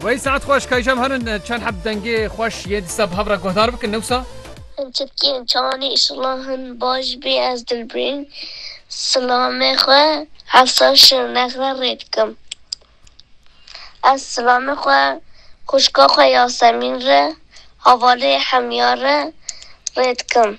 Wey saet xweş kayşem herin çend heb dengê xweş yê dîsa bi hev re guhdar bikin newsa. Hin çirkiyên çawanê îşillah hin baş bê ez dilbirîn silamê xwe hefsa şirnex re rê dikim. Ez silamê xwe xwişka xwe Yasemîn re havalê Hemya re rê dikim.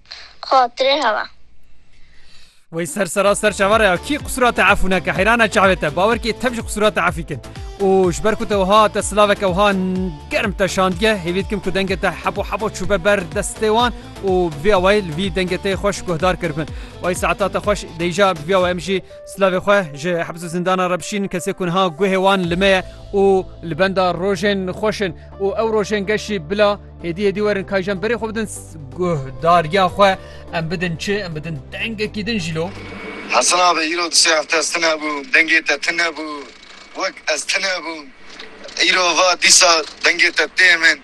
xatirê hewa. Wey ser sera ser çava re ya kî qusura te efû neke heyrane çavê te bawer kê tev ji qusura te efî kin û ji ber ku te wiha te silaveke wiha germ te şandiye hêvî dikim ku dengê te hebo hebo çûbe ber destê wan û vê awayî li vî dengê te xweş guhdar kiribin wey saeta te xweş deyja bi vê awayî em jî silavê xwe ji hebz û zindana re bişînin kesê ku niha guhê wan li me ye û li benda rojên xweş in û ew rojên geşî bila Hêdî hêdî werin kayjan berê xwe bidin guh dariya xwe em bidin çi em bidin dengekî din jî lo. Hesin abi îro du sê hefte ez tune bûm dengê te tune bû wek ez tune bûm îro va dîsa dengê te tê min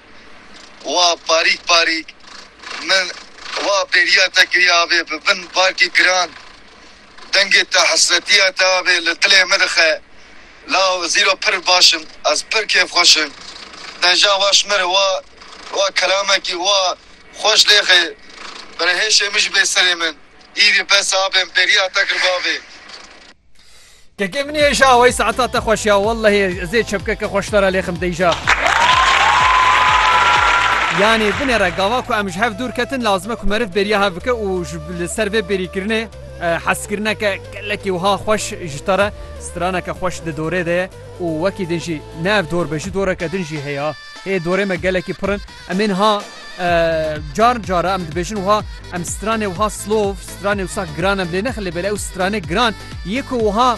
wa parîk parîk min wa bêriya te kiriye abê bi bin barkî giran dengê te hesretiya te abê li dilê min dixe. La zîro pir baş im ez pir kêfxweş im Dejan waş mir wa wa kelamekî wa xweş lêxê bere hêşê min ji bê serê min îrî bes abêm bêriya te kir bavê. Kekê min hêşa wey saeta te xweş ya wellehê ez ê çepkeke xweştara lêxim deyja. Yanî binêre gava ku em ji hev dûr ketin lazime ku meriv bêriya hev bike û ji li ser vê bêrîkirinê Hezkirineke gelekî wiha xweş ji te re straneke xweş di dorê de ye û wekî din jî ne ev dor be jî doreke din jî heye ha. Hê dorê me gelekî pir in. Em ê niha car cara em dibêjin wiha em stranê wiha slov stranê wisa giran em lê nexilê belê ew stranê giran yê ku wiha